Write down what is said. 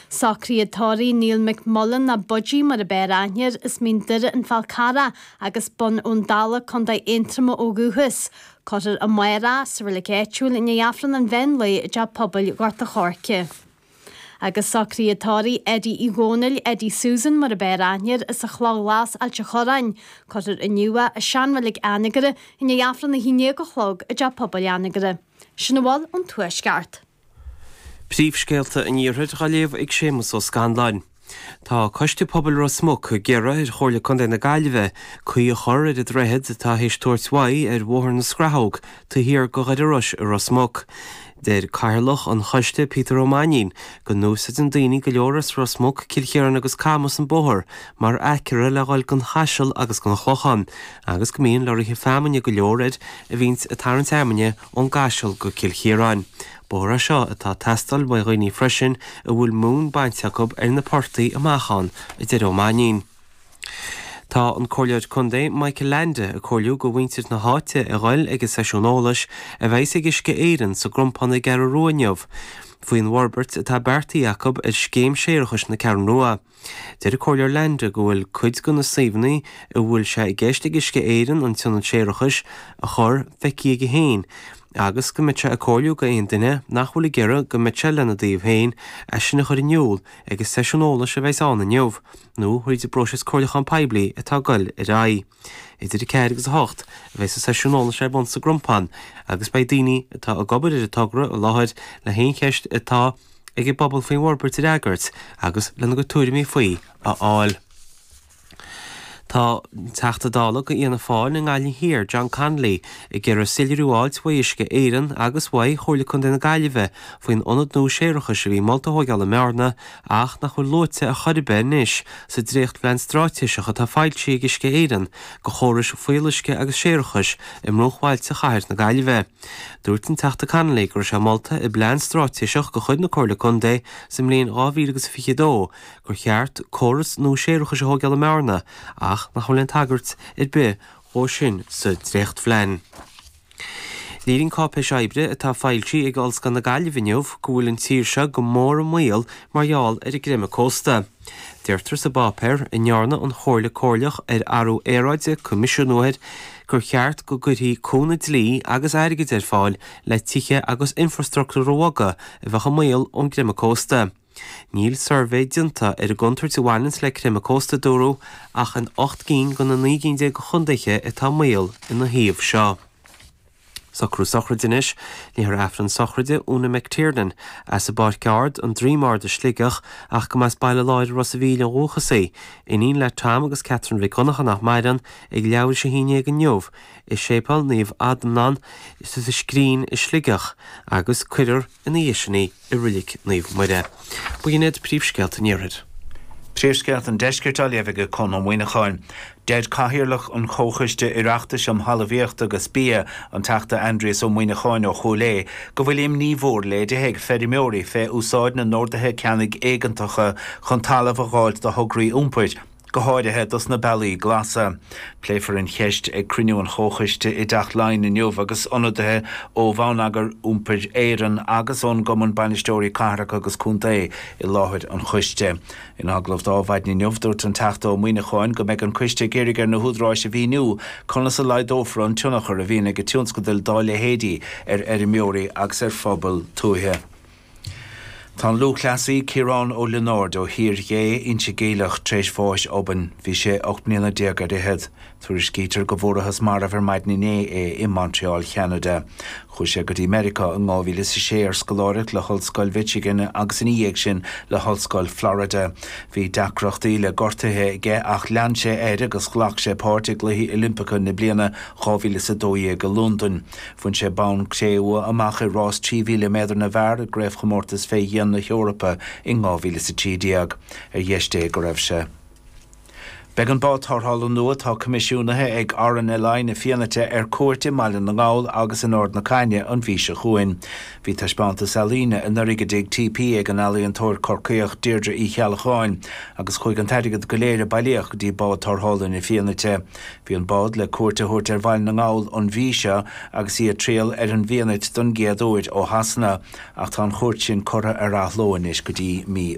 Socruithe tórraimh, Neil McMullan nó Budgie mar ab fhearr aithne air, as Mín Doire, An Fál Carrach agus Bun Abhann Dalla, Contae Aontroma ó dhúchas. Cuirfear amárach sa reilig áitiúil i ndiaidh Aifreann an Mheán Lae i dTeach Pobail Ghort a' Choirce. Agus socruithe tórraimh, Eddie Uí Dhónaill, Eddie Susan mar ab fhearr aithne air, as an Chloch Ghlas, Ailt a' Chorráin, cuirfear inniu é, i seanreilig Anagaire, i ndiaidh Aifreann a haon déag a chlog i dTeach Pobail Anagaire. Sin a bhfuil ón Tuaisceart. Príomhscéalta an Iarthair dhá léamh ag Séamus Ó Scanláin. Tá Coiste Pobail Ros Muc ag iarraidh ar Chomhairle Contae na Gaillimhe caoi a chur ar an droichead atá théis tabhairt uaidh ar Bhóthar na Scrathóg taobh thiar de Dhoire Iorrais i Ros Muc. Deir Cathaoirleach an Choiste, Peter Ó Mainín, go n-úsaideann daoine go leor as Ros Muc, Cill Chiaráin agus Camas an bóthar mar aicearra le dhul don Chaiseal agus don Chlochán agus go mbíonn leoraithe feamainne go leor air a bhíonns ag tarraingt fheamainne ón gCaiseal go Cill Chiaráin. Bóthar é seo atá ag teastáil uaidh dhaoine freisin a bhfuil móin bainte acu ar na portaigh amach ann, a deir Ó Mainín. Tá an Comhairleoir Contae Michael Leainde ag comhairliú do mhuintir na háite a ghoil ag an seisiún eolais a bheas ag Uisce Éireann sa gCrompán ar an gCeathrú Rua inniu faoin bhforbairt atá beartaithe acu ar scéim séarachais na Ceathrún Rua. Deir an Comhairleoir Leainde go bhfuil cuid de na suíomhanna a bhfuil sé i gceist ag Uisce Éireann an t-ionad séarachais a chur feicthe aige féin agus go mbeidh sé ag comhairliú do aon duine nach bhfuil ag iarraidh go mbeadh sé lena dtaobh féin é sin a chur in iúl ag an seisiún eolais a bheas ann inniu nó tríd an bpróiseas comhairliúcháin poiblí atá ag dul ar aghaidh. idir 4 agus 8, a bheas an seisiún eolais ar bun sa gCrompán agus beidh daoine atá ag obair ar an togra i láthair le haon cheist atá ag an bpobal faoin bhforbairt a fhreagairt agus lena gcuid tuairimí faoi a fháil. Tá an Teachta Dála do Fhianna Fáil i nGaillimh Thiar, John Connolly, ag iarraidh soiléiriú a fháilt uaidh Uisce Éireann agus uaidh Chomhairle Contae na Gaillimhe faoin ionad nua séarachais a bhí molta a thógáil i mBearna ach nach bhfuil luaite ar chor ar bith anois sa dréachtphlean stráitéiseach atá foilsithe ag Uisce Éireann do chórais fuíolluisce agus séarachais i mbruachbhailte chathair na Gaillimhe. Dúirt an Teachta Connolly go raibh sé molta i bplean stráitéiseach de chuid na Comhairle Contae sa mbliain dhá mhíle agus a fiche dó gur cheart córas nua séarachais a thóigeáil i mBearna ach nach bhfuil aon tagairt ar bith dhó sin sa dréachtphlean. Léiríonn cáipéis oibre atá foilsithe ag Ollscoil na Gaillimhe inniu go bhfuil an tír seo go mór i mbaol mar gheall ar an gcreimeadh cósta. Deirtear sa bpáipéar, a ndearna an Chomhairle Comhairleach ar Athrú Aeráide coimisiúnú air, gur cheart go gcuirfí cúnamh dlí agus airgid ar fáil le tithe agus infreastruchtúr a bhogadh a bheadh i mbaol ón gcreimeadh cósta. Níl suirbhé déanta ar an gcontúirt a bhaineanns le creimeadh cósta, dúradh, ach in ocht gcinn de na naoi gcinn déag de chondaetha atá i mbaol ina thaobh seo. Socrú sochraide anois, léifear Aifreann sochraide Úna McTiernan as an bPáirc Ard, An Droim Ard i Sligeach, ach go mb'as Baile Láir i Ros a' Mhíl ó dhúchas í. Iníon le Tom agus Catherine Mhic Dhonncha nach maireann, ag leathuair tar éis a haon déag inniu i Séipéal Naomh Adhamhnán sa Scrín i Sligeach, agus cuirfear. ina dhiaidh sin í i Reilig Naomh Muire. B'in iad príomhscéalta an Iarthair. Príomhscéalta an Deiscirt á léamh ag Conn Ó Muíneacháin. Deir Cathaoirleach an Chomhchoiste Oireachtais um Thalmhaíocht agus Bia, an Teachta Aindrias Ó Muimhneacháin ó Chúil Aodha, go bhfuil imní mhór léirithe ag feirmeoirí fé úsáid na n-orduithe ceannaigh éigeantacha chun talamh a dh'fháilt do thograí iompair go háirithe dos na Bealaí Glasa. Pléifear an cheist ag cruinniú an Chomhchoiste i dTeach Laighean inniu agus ionadaithe ó Bhonneagar Iompair Éireann agus ón gCumann Bainisteoirí Cathracha agus Contae i láthair an choiste. In agallamh d'Adhmhaidin inniu, dúirt an Teachta Ó Muimhneacháin go mbeidh an coiste ag iarraidh ar na húdaráis a mhíniú conas a laghdófar an tionchar a bhíonn ag tionscadail dá leithéidí ar fheirmeoirí agus ar phobail tuaithe. Tá an lúthchleasaí Ciarán Ó Lionáird ó Thír Ghé, Inse Geimhleach, tar éis bháis obainn. Bhí sé ocht mbliana déag ar fhichead. Tuairiscítear go bhfuarathas marbh ar maidin inné é i Montreal Cheanada. Chuaigh sé go dtí Meiriceá in 2006 ar scoláireacht le hOllscoil Mhichigan agus ina dhiaidh sin le hOllscoil Florida. Bhí deacrachtaí le gortuithe aige ach lean sé air agus ghlac sé páirt i gCluichí Oilimpeacha na bliana 2012 i Londain. Bhain sé bonn cré-umha amach i rás 3,000 méadar na bhfear i gCraobhchomórtas Fé Dhíon na hEorpa in 2013, ar dheis Dé go raibh sé. Beidh an bád tarrthála nua atá coimisiúnaithe ag RNLI na Fianaite ar cuairt i mBaile na nGall agus in Ard na Caithne an mhí seo chugainn. Bhí taispeántas ealaíne anuraidh i dTigh TP ag an ealaíontóir Corcaíoch Deirdre Uí Cheallacháin agus chuaigh an t-airgead go léir a bailíodh go dtí bád tarrthála na Fianaite. Bhí an bád le cuairt a thabhairt ar Bhaile na nGall an mhí seo agus í ag triall ar an bhFianait don gcéad uair ó Shasana, ach tá an chuairt sin curtha ar athló anois go dtí mí